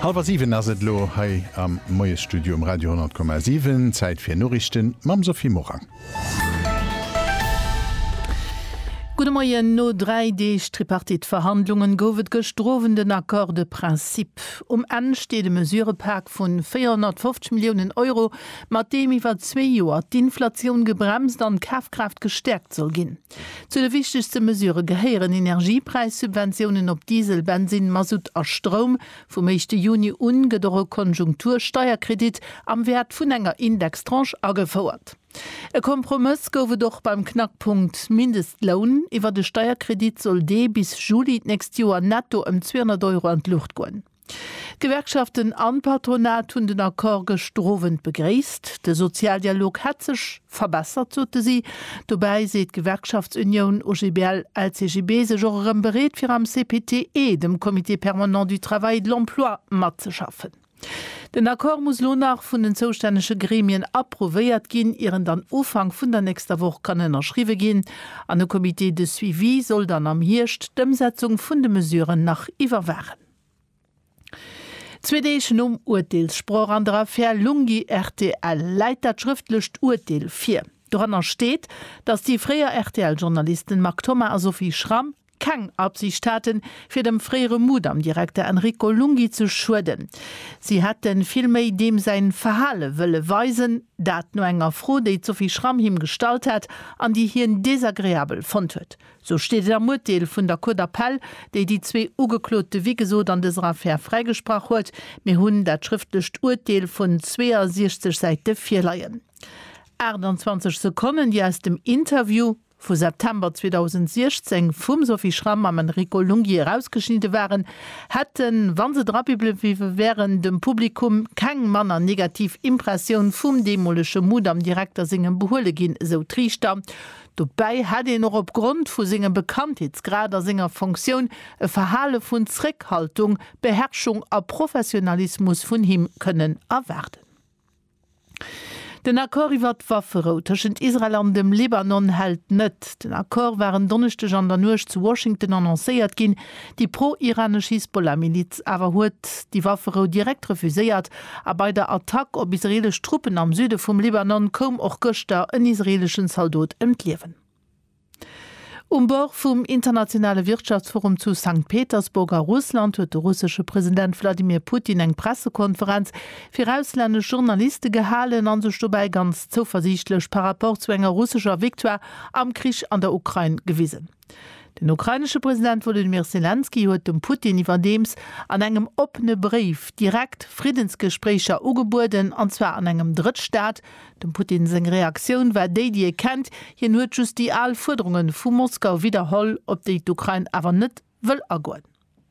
Hallwer 7 ass et elo hei am Moiesstudio um Radio 10,7. Zäit fir Noriichten mam Sophie Morang. Gudde Moien. No dräi Deeg Tripartite-Verhandlungen gouf et gëschter Owend en Accord de principe. Um Enn steet e Mesurëpak vun 450 Milliounen Euro, mat deem iwwer zwee Joer d'Inflatioun gebremst an d'Kafkraaft gestäerkt soll ginn. Zu de wichtegste Mesurë gehéieren Energiepräissubventiounen op Diesel, Bensin, Masutt a Stroum. Vum éischte Juni u gëtt och e Konjunktursteierkredit am Wäert vun enger Indextranche agefouert. E Kompromëss gouf et och beim Knackpunkt Mindestloun. Iwwer de Steierkredit soll dee bis Juli d'nächst Joer netto ëm 200 Euro an d'Luucht goen. D'Gewerkschaften an d'Patronat hunn den Accord gëschter Owend begréisst. De Sozialdialog hätt sech verbessert, sote si. Dobäi seet d'Gewerkschaftsunioun OGBL-LCGB sech och erëm bereet fir am CPTE, dem Comité permanent du travail et de l'emploi, matzeschaffen. Den Accord muss elo nach vun den zoustännege Gremien approuvéiert ginn, ier en dann Ufank vun der nächster Woch kann ënnerschriwwe ginn. An e Comité de suivi soll dann am Hierscht d'Ëmsetzung vun de Mesuren nach iwwerwaachen. Zwee Deeg nom Urteelssproch an der Affär Lunghi-RTL läit dat schrëftlecht Urteel vir. Doranner steet, datt déi fréier RTL-Journalisten Marc Thoma a Sophie Schramm keng Absicht haten, fir dem fréiere Mudam-Direkter Enrico Lunghi ze schueden. Si hätte villméi deem säi Verhale wëlle weisen. Dat no enger Fro, déi d'Sophie Schramm him gestallt hat an déi hien desagreabel fonnt huet. Sou steet et am Urteel vun der Cour d'appel, déi déi zwee Ugeklote wéi gesot an dëser Affär fräigesprach huet. Mir hunn dat schrëftlecht Urteel vun 62 Säite virleien, 28 Sekonnen, déi aus dem Interview vu September 2016 vum Sophie Schram mam Enrico Lunghi erausgeschnidde waren, hätten, wa se drabiblewiwe wären, dem Publikum keng manner negativ Impressioun vum deemolege Mudam-Direkter sengem behuele ginn, esou d'Riichter. Dobäi hätt een och opgrond vu sengem Bekanntheetsgrad a senger Fonctioun e Verhale vun Zréckhaltung, Beherrschung a Professionalismus vun him kënnen erwaarden. Den Accord iwwer d'Wafferou tëschent Israel an dem Libanon hält net. Den Accord war en Donneschdeg an der Nuecht zu Washington annoncéiert ginn, Déi pro-iranesch Hisbollah-Miliz awer huet déi Wafferou direkt refuséiert a bei der Attack op israeelesch Truppen am Süde vum Libanon koum och gëschter en israeeleschen Zaldot ëm d'Liewen. Um Bord vum internationale Wirtschaftsforum zu Sankt Petersburg a Russland huet de russesche President Wladimir Putin eng Pressekonferenz fir auslännesch Journaliste gehalen a sech dobäi ganz zouversiichtlech par rapport zu enger russescher Victoire am Krich an der Ukrain gewisen. Den ukrainesche President Wolodymyr Selenskyj huet dem Putin iwwerdeems an engem oppene Bréif direkt Friddensgespréicher ugebueden, an zwar an engem Drëttstaat. Dem Putin seng Reaktioun war déi, déi ee kennt, hien huet just déi al Fuerderunge vu Moskau widderholl, op déi d'Ukrain awer net wëll agoen.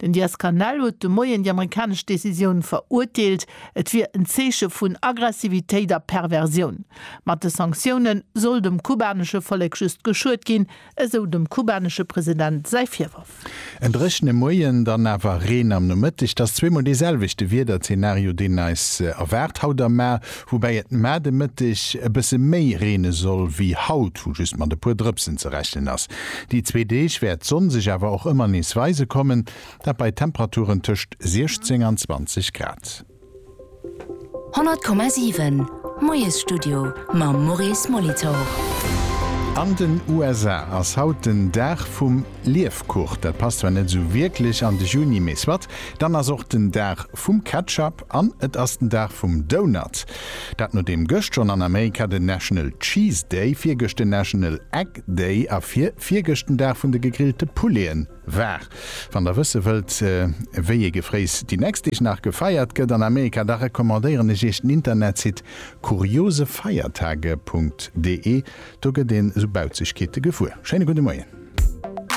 Den Diaz-Canel huet de Moien déi amerikanesch Decisioun verurteelt. Et wier en Zeeche vun Aggressivitéit a Perversioun. Mat de Sanktioune soll dem kubanesche Vollek just geschuet ginn, esou dem kubanesche President säi Virworf. En dréchene Moien, dann awer Reen am Nomëtteg. 't ass zweemol dee selwechte Wiederzenario, deen eis erwaart haut am Mar. Woubäi et mar de Mëtteg e bësse méi reene soll wéi haut, wou just mat e puer Drëpsen ze rechnen ass. Déi zwee Deeg wäert d'Sonn sech awer och ëmmer nees weise kommen, dat bei Temperaturen tëscht 16 an 20 Grad. 100,7 Moiesstudio mam Maurice Molitor. An den USA ass haut den Dag vum Liefkuch. Dat passt zwar net esou wierklech an de Juni, mee soit. Dann ass och den Dag vum Ketchup. An et ass den Dag vum Donut. Dat nodeem gëscht schonn an Amerika den National Cheese Day, virgëscht den National Egg Day a vir virgëscht den Dag vun de gegrillte Pouleten war. Wann der wësse wëllt, wéi ee Gefréiss déi nächst Deeg nach gefeiert gëtt an Amerika, da recommandéieren ech iech den Internetsite kuriosefeiertage.de. Do gëtt een esou Bauzegkeete gewuer. Schéine gudde Moien.